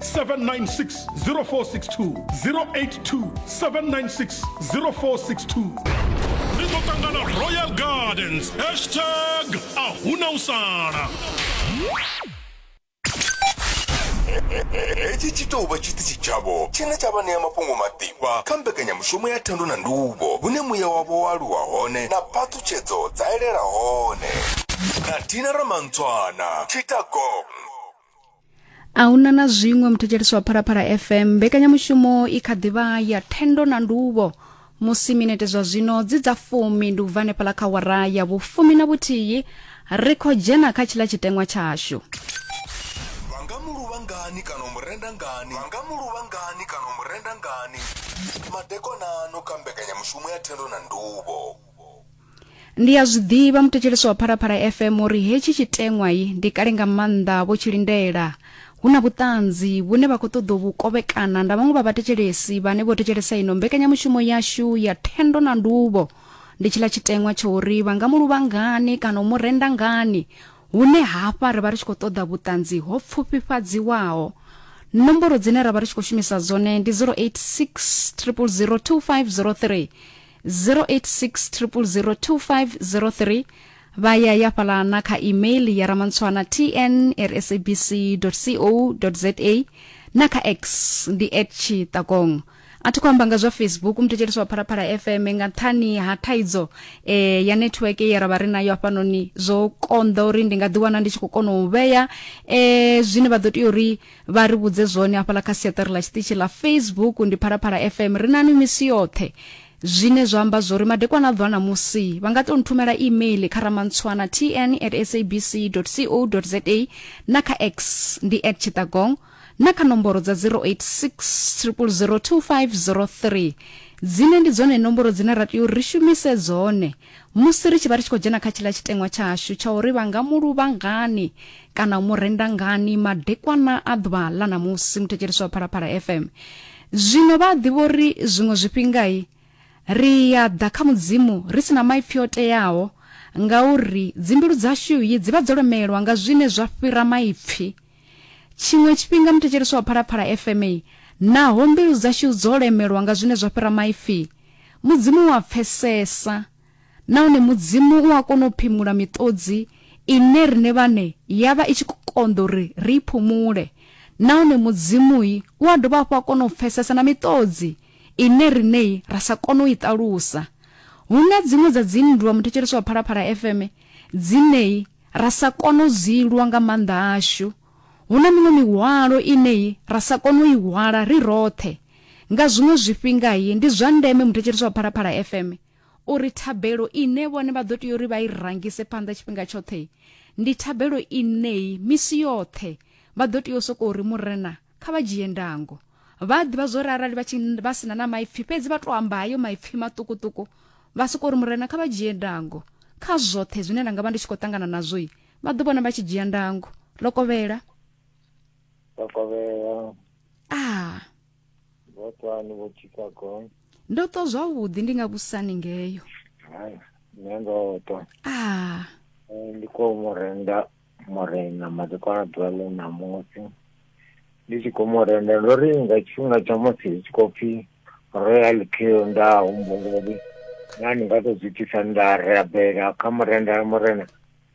796 0462 082 796 0462 ri ḓo ṱangana royal gardens hashtag a huna u sala hetshi tshi tou vha tshiṱitshi tshavho tshine tsha vha ṋea mafhungo maḓifha kha mbekanyamushumo ya thendo na nduvho hune muya wavho wa aluwa hone na phaṱhutshedzo dza elela hone na dina ramantswana tshitagong a huna na zwiṅwe muthetshelesi wa phalaphala fm mbekanyamushumo i kha ḓivha ya thendo na nduvho musi minete zwa zwino dzi dza fumi ndi u bva hanefhala kha wara ya vhufumi na vhuthihi ri khou dzhena kha tshiḽa tshiteṅwa tshashu vha nga mu luvha ngani kana u mu renda ngani vha nga mu luvha ngani kana u mu renda ngani madekonano kha mbekanyamushumo ya thendo na nduvho Ndi a zwi ḓivha muthetshelesi wa Phalaphala FM uri hetshi tshiteṅwai ndi kale nga maanḓa vho tshi lindela. Hu na vhuṱanzi vhune vha khou ṱoḓa u vhu kovhekana nda vhaṅwe vha vhathetshelesi vhane vho thetshelesa ino mbekanyamushumo yashu ya thendo na nduvho. Ndi tshiḽa tshiteṅwa tsha uri vha nga mu luvha ngani kana u mu renda ngani hune hafha ri vha ri tshi khou ṱoḓa vhuṱanzi ho pfufhifhadziwaho. Nomboro dzine ra vha ri tshi khou shumisa dzone ndi 086 000 2503 0860002503 vha ya ya fhala na kha email ya ramantswana tn rsabc co za na kha x ndi at tshiṱakong a thi khou amba nga zwa facebook muthetshelesi wa phalaphala fm nga nṱhani ha thaidzo eh, ya network ye ra vha ri nayo hafhanoni zwo konḓa uri ndi nga ḓiwana ndi tshi khou kona u vhea eh, zwine vha ḓo tea uri vha ri vhudze zwone hafhaḽa kha siaṱari ḽa tshiṱitshi ḽa facebook ndi phalaphala fm ri nani misi yoṱhe zwine zwa amba zwori madekwana a ḓwa na musi vha nga to nthumela email kha ramantswana tn at sabc co za na kha x ndi at chitagong na kha nomboro dza 086 0002503 dzine ndi dzone nomboro dzine ra tea uri ri shumise dzone Musi ri tshi vha ri tshi khou dzhena kha tshiḽa tshiteṅwa tshashu tsha uri vha nga mu luvha ngani kana u mu renda ngani madekwana a ḓuvha ḽa ṋamusi muthetshelesi wa Phalaphala FM zwino vha a ḓivha uri zwiṅwe zwifhingai ri ya ḓa kha mudzimu ri si na maipfi o teaho ngauri dzimbilu dzashu yi dzi vha dzo lemelwa nga zwine zwa fhira maipfi Tshiṅwe tshifhinga muthetshelesi wa Phalaphala FM i, naho mbilu dzashu dzo lemelwa nga zwine zwa fhira maipfi, Mudzimu u a pfesesa nahone Mudzimu u a kona u phimula miṱodzi ine riṋe vhaṋe ya vha i tshi khou konḓa uri ri i phumule. Nahone Mudzimu-i u a dovha hafhu a kona u pfesesa na miṱodzi ine riṋe-i ra sa kone u i ṱalusa. Hu na dziṅwe dza dzinndwa muthetshelesi wa Phalaphala FM dzine-i, ra sa kona u dzi lwa nga maanḓa ashu. Hu na miṅwe mihwalo ine ra sa kona u i hwala ri roṱhe. Nga zwiṅwe zwifhinga ndi zwa ndeme muthetshelesi wa Phalaphala FM uri thabelo ine vhone vha ḓo tea uri vha i rangise phanḓa tshifhinga tshoṱhe ndi thabelo inei misi yoṱhe vha ḓo tea u sokou ri murena kha vha dzhie ndango vha a ḓivha zwori arali vha tshi vha sina na maipfi fhedzi vha to amba hayo maipfi maṱukuṱuku vha soko ri murena kha vha dzhie ndango kha zwoṱhe zwine nda nga vha ndi tshi khou ṱangana nazwo i vha ḓo vhona vha tshi dzhia ndango lokovhela lokovhela a ah. vhotwani vho chicago ndo to zwavhuḓi ndi nga vhusani ngeyo nṋe ndo to a ah. eh, ndi khou mu renda murena madekwana ḓuvha ḽe na musi ndi tshi khou mu renda ndo ri nga tshifhinga tsha musi ri tshi khou pfhi royal kill nda humbula uri na ndi nga to zwi itisa nda rabela kha murenda ya murena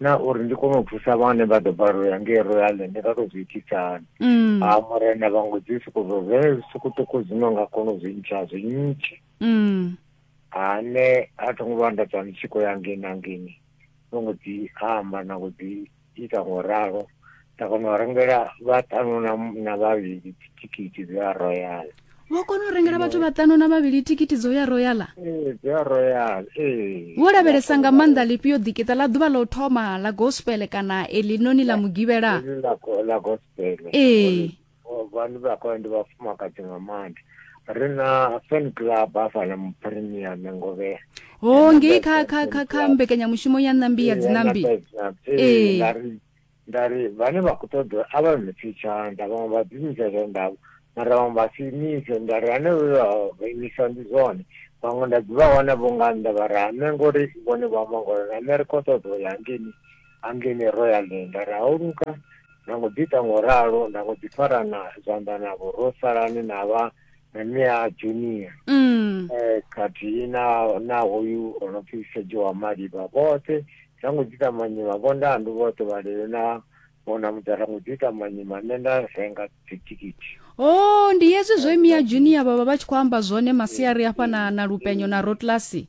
na uri ndi kone u thusa vhane vha ḓo balelwa ya ngei royal ndi nga to zwi itisa hani mm. a murena vhango dzi soko zwo zwe zwiṱukuṱuku zwino nga kona u zwi ntsha zwi ntshe mm. ane a tho ngo vha nda tswa ndi tshi khou ya ngei na ngeni no ngo dzi amba na ngo dzi ita ngo ralo nda kona u rengela vhaṱanu na na vhavhili thikhithi dza royal vho kona u rengela vhathu vhaṱanu na vhavhili thikhithi dzo ya royala ee dza royal ee vho lavhelesa nga maanḓa lifhio ḓikiṱa ḽa ḓuvha ḽa u thoma ḽa gospel kana eḽinoni ḽa mugivhela Heḽi ḽa go- ḽa gospel Ee. vhanu vha khou ndi vhafumakadzi nga maanḓa ri na fan club hafhala mupremia mengovhea ho oh, ngei kha kha kha kha mbekanyamushumo ya ṋambi ya dzinambi ee nda ri vhane vha khou ṱoḓa a vha mipfi tshanḓa vhaṅwe vha ḓiimisa tshandavho mara vhaṅwe vha si imise nda ri hanevho vha imisa ndi zwone vhaṅwe nda ḓivha wana vho nga nnḓa vha ri hame ngori vhone vha mangolo na nṋe ri khou ṱoḓa u ya ngeni Anglini Royalini nda ri hauluka nda ngo ḓi ita ngo ralo nda ngo ḓi farana zwanḓa navho ro salani na vha na nṋe a junior mm. eh, khathihi na na hoyu o no pfi sejo wa malivha vhoṱhe nda ngo ḓi ita manyima vhondandu vhoṱhe vhalelo na vhona mudara ngo ḓi ita manyima nṋe nda renga dzithikhithi o oh, ndi hezwi zwe mia junior vhavha vha tshi khou amba zwone masiari afha na, na lupenyo na rotlasi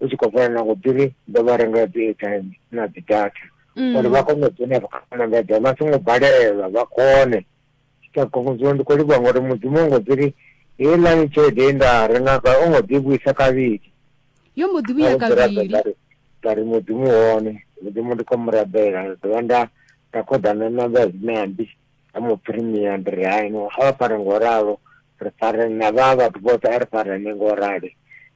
u tshi khou fana na ngo ḓiri ndo vha rengela dzi airtime na dzi data mm. uri vha kone u dzhena vha anamedza vha songo balelwa vha kone tsha khongodziwa ndi khou livhuwa ngori mudzimu o ngo ḓiri heilani tshelede ye nda renga ka o ngo ḓi vhuisa kavhili yo mbo ḓi vhuya kavhili nda ri mudzimu hone mudzimu ndi khou mu rabela nda dovha nda nda khoḓana na vha zinambi a mu premier ndi ri haino a vha fare ngo ralo ri fare na vha vhathu vhoṱhe a ri fare ni ngo rali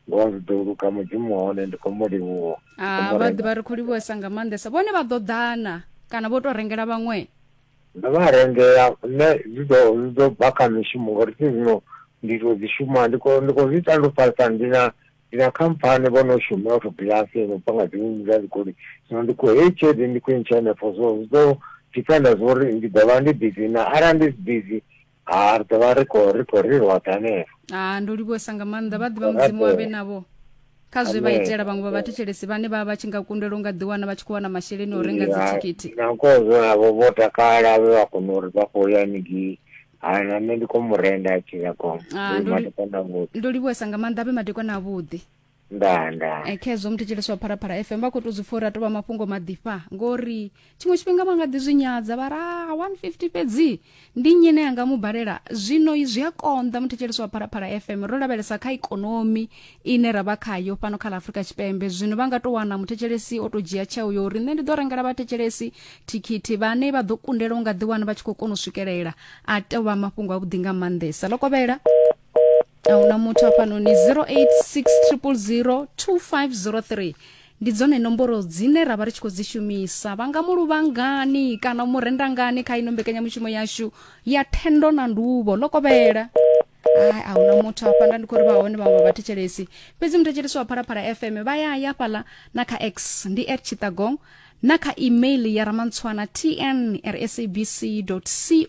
ngo zwi ḓo luka mudzimu hone ndi khou mu livhuwa ah, vha ḓivha ri khou livhuwesa nga maanḓesa vhone vha ḓo ḓana kana vho tou rengela vhaṅwe ndo vha rengela nṋe zwi ḓo zwi ḓo bva kha mishumo ngori thi zwino ndi tou dzi shuma ndi khou ndi khou zwi ita ndo falisa ndi na ndi na khamphani vho no shuma u tou bilasi no bva nga dziṅwe dza dzikoli zwino ndi khou heyi tshelede ndi khou intsha henefho so zwi ḓo dependa zwa uri ndi ḓo vha ndi busy na arali ndi si busy ha ri ḓo vha ri khou ri khou ri roṱhe hanefho ha ndo livhuwesa nga maanḓa vha ḓivha mudzimu wa vhe navho kha zwe vha Amen. itela vhaṅwe vha vhathetshelesi vhane vha vha vha tshi nga kundelwa u nga ḓiwana vha tshi khou wana masheleni a u renga dzithikhithi nakozwo navho vho takala vhe vha kona uri vha khou ya haningei ha na nṋe ndi khou mu renda a tshi ya goma Ah, ndo li- matekana vhuḓi ndo livhuwesa nga maanḓa a vhe madekwana avhuḓi ndaa ndaa Eh, khezwo muthu tshileswa wa pharapara fm vha khou tou zwi pfa uri a tou vha mafhungo maḓifha ngori tshiṅwe tshifhinga vha nga ḓi zwi nyadza vha ra 150 fhedzi ndi nnyi ne anga mu balela zwino zwi a konḓa muthu tshileswa wa pharapara fm ro lavhelesa kha ikonomi ine ra vha khayo fhano kha ḽa afurika tshipembe zwino vha nga tou wana muthetshelesi o tou dzhia tsheo yo uri nṋe ndi ḓo rengela vhathetshelesi thikhithi vhane vha ḓo kundelwa u nga ḓiwana vha tshi khou kona u swikelela a tou vha mafhungo avhuḓi nga maanḓesa ḽo kovhela ahuna muthu hafhanoni 0860002503 ndi dzone nomboro dzine ra vha ri tshi khou dzi shumisa vha nga mu luvha ngani kana u mu renda ngani kha ino mbekanyamushumo yashu ya thendo na nduvho ḽo kovhela hai a huna muthu hafha nda ndi khou ri vha hone vhaṅwe vha thetshelesi fhedzi muthetshelesi wa phalaphala fm vha ya ya fhaḽa na kha x ndi at chitagong na kha email ya ramantswana tn rsabc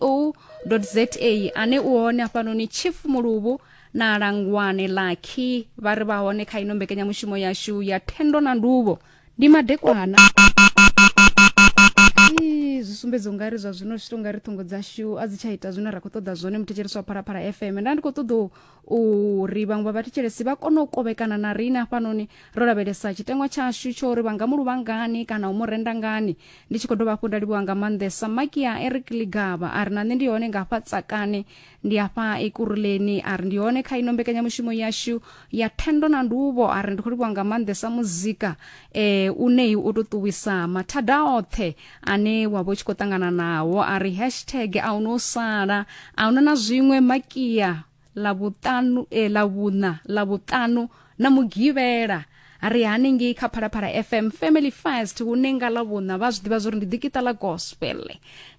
co za ane u hone hafhanoni chief muluvhu na langwane lakhi vha ri vha hone kha ino mbekanyamushumo yashu ya thendo na nduvho ndi madekwana Ii, zwi sumbedza ungari zwa zwino zwi to ngari ṱhungo dzashu a dzi tsha ita zwine ra khou ṱoḓa zwone muthetshelesi wa phalaphala fm nda ndi khou ṱoḓa u uri vhaṅwe vha vhathetshelesi vha kone u kovhekana na riṋe hafhanoni ro lavhelesa tshitengwa tshashu tsho uri vha nga mu luvha ngani kana u mu renda ngani ndi tshi khou dovha hafhu nda livhuwa nga maanḓesa maki ya eric ligaba a ri na nṋe ndi hone nga hafha tsakane ndi hafha ekuruleni a ri ndi hone kha ino mbekanyamushumo yashu ya thendo na nduvho a ri ndi khou livhuwa nga maanḓesa muzika um uneyi u ṱuṱuwisa mathada oṱhe ane wa vha u tshi khou ṱangana nawo a ri hashtag a huna u sala a huna na zwiṅwe makia ḽa vhuṱanu e eh, ḽa vhuṋa ḽa vhuṱanu na mugivhela a ri haningei kha phalaphala fm family first hune nga ḽa vhuṋa vha zwi ḓivha zwa uri ndi ḓikita ḽa gospel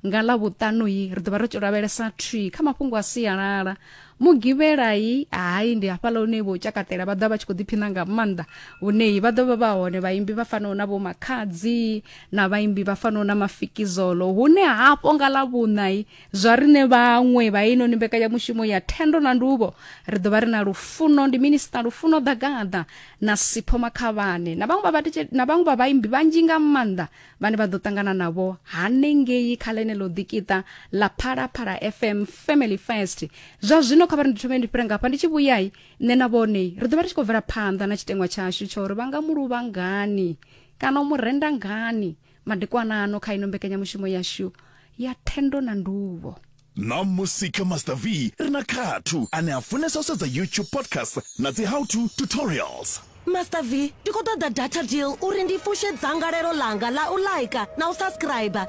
nga ḽa vhuṱanuyi ri ḓo vha ri tshi lavhelesa tree kha mafhungo a sialala mugivhelai hai ndi hafhaḽa hune vho tshakatela vha ḓa vha tshi khou ḓiphina nga maanḓa vhuneyi vha ḓovha vha hone vhaimbi vha fanaho na vho makhadzi na vhaimbi vha fanaho na mafikizolo hune hafho nga ḽa vhuṋai zwa riṋe vhaṅwe vha inoni mbekanyamushumo ya thendo na nduvho ri ḓo vha ri na lufuno ndi minista lufuno ḓagaḓa na sipho makhavhane na vhaṅwe vha vhatetshe- na vhaṅwe vha vhaimbi vhanzhi nga maanḓa vhane vha ḓo ṱangana navho hanengei kha ḽeneḽo ḓikiṱa ḽa phalaphala fm family first zwa zwino kha vha ri ndi thome ndi fhira ngafha ndi tshi vhuyai nṋe na vhone ri ḓo vha ri tshi khou bvela phanḓa na tshiteṅwa tshashu tsha uri vha nga muluvha ngani kana u mu renda ngani madekwana ano kha ino mbekanyamushumo yashu ya thendo na nduvho na musi kha master v ri na khathu ane a funesa u sedza youtube podcast na dzi how to tutorials master v ndi khou ṱoḓa data deal uri ndi fushe dzangalelo ḽanga ḽa u laika na u subscribe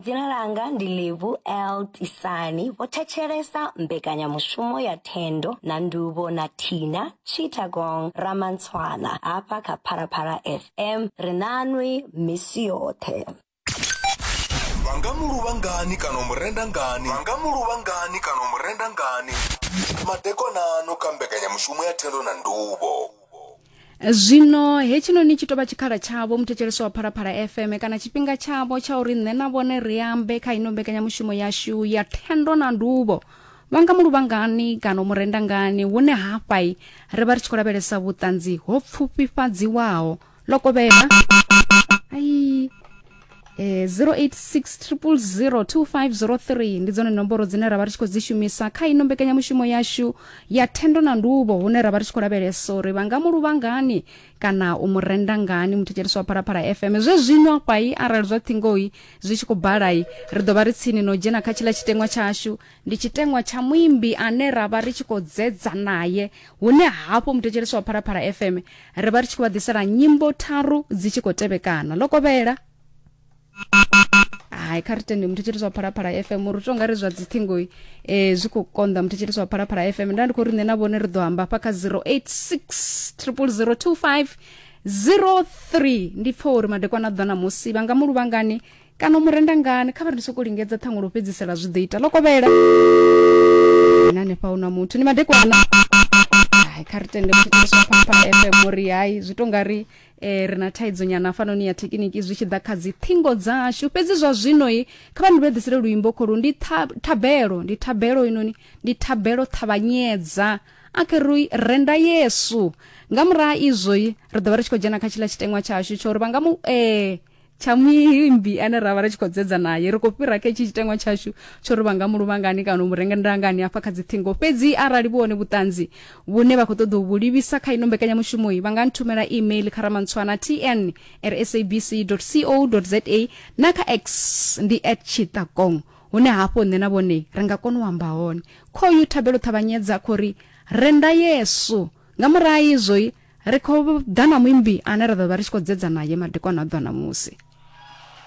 Dzina langa ndi Livu L Tisani vho thetshelesa mbekanyamushumo ya Thendo na Nduvho na Thina Chittagong Ramantswana hafha kha Phalaphala FM ri nanwi misi yoṱhe. vha nga mu luvha ngani kana u mu renda ngani vha nga mu luvha ngani kana u mu renda ngani madekonano kha mbekanyamushumo ya thendo na nduvho zwino hetshinoni tshi tou vha tshikhala tshavho muthetshelesi wa phalaphala fm kana tshifhinga tshavho tsha uri nṋe na vhone ri ambe kha ino mbekanyamushumo yashu ya thendo na nduvho vha nga mu luvha ngani kana u mu renda ngani hune hafhai ri vha ri tshi khou lavhelesa vhuṱanzi ho pfufhifhadziwaho loko vema ai eh, 0860002503 ndi dzone nomboro dzine ra vha ri tshi khou dzi shumisa kha ino mbekanyamushumo yashu ya thendo na nduvho hune ra vha ri tshi khou lavhelesa uri vha nga mu luvha ngani kana u mu renda ngani muthetshelesi wa phalaphala fm zwe zwino kwai arali zwa thingoyi zwi tshi khou balai ri ḓo vha ri tsini no dzhena kha tshila tshiteṅwa tshashu ndi tshiteṅwa tsha muimbi ane ra vha ri tshi khou dzedza naye hune hafho muthetshelesi wa phalaphala fm ri vha ri tshi khou vha ḓisela nyimbo tharu dzi tshi khou tevhekana ḽo kovhela hai kha ri tende muthetshelesi wa phalaphala fm uri u tonga ri zwa dziṱhingo um eh, zwi khou konḓa muthetshelesi wa phalaphala fm nda ndi khou ri nṋe na vhone ri ḓo amba hafha kha 086 triple 025 03 ndi pfa uri madekwana ḓa na musi vha nga mu luvhangani kana u mu renda ngani kha vha ri sokou lingedza ṱhaṅwe lwo fhedzisela zwi ḓo ita ḽo kovhela na hanefha hu na muthu ni madekwana hai kha ri tende mutshiteswa papa fm uri hai zwi to nga ri eh, ri na thaidzo nyana fanoni ya thekiniki zwi tshi ḓa kha dzi ṱhingo dzashu fhedzi zwa zwinoi kha vha ni vhedzisele luimbo kholu ndi tha- thabelo ndi thabelo inoni ndi thabelo ṱhavhanyedza a khe ri renda yesu nga muraha izwoi ri ḓo vha ri tshi khou dzhena kha tshiḽa tshiteṅwa tshashu tsho uri vha nga mu eh, tsha muimbi ane ra vha ri tshi khou dzedza naye ri khou fhira kha itshi tshitengwa tshashu tsho ri vha nga muluvhangani kana u mu renga ndangani hafha kha dziṱhingo fhedzi arali vhu hone vhuṱanzi vhune vha khou ṱoḓa u vhu livhisa kha ino mbekanyamushumoyi vha nga nthumela email kha ramantswana tn rsabc co za na kha x ndi at tshiṱakong hune hafho nṋe na vhone ri nga kona u amba hone khoyu thabelo ṱhavhanyedza khou ri renda yesu nga murahu izwoi ri khou ḓa na muimbi ane ra ḓo vha ri tshi khou dzedza naye madekwana a ḓuvha ṋamusi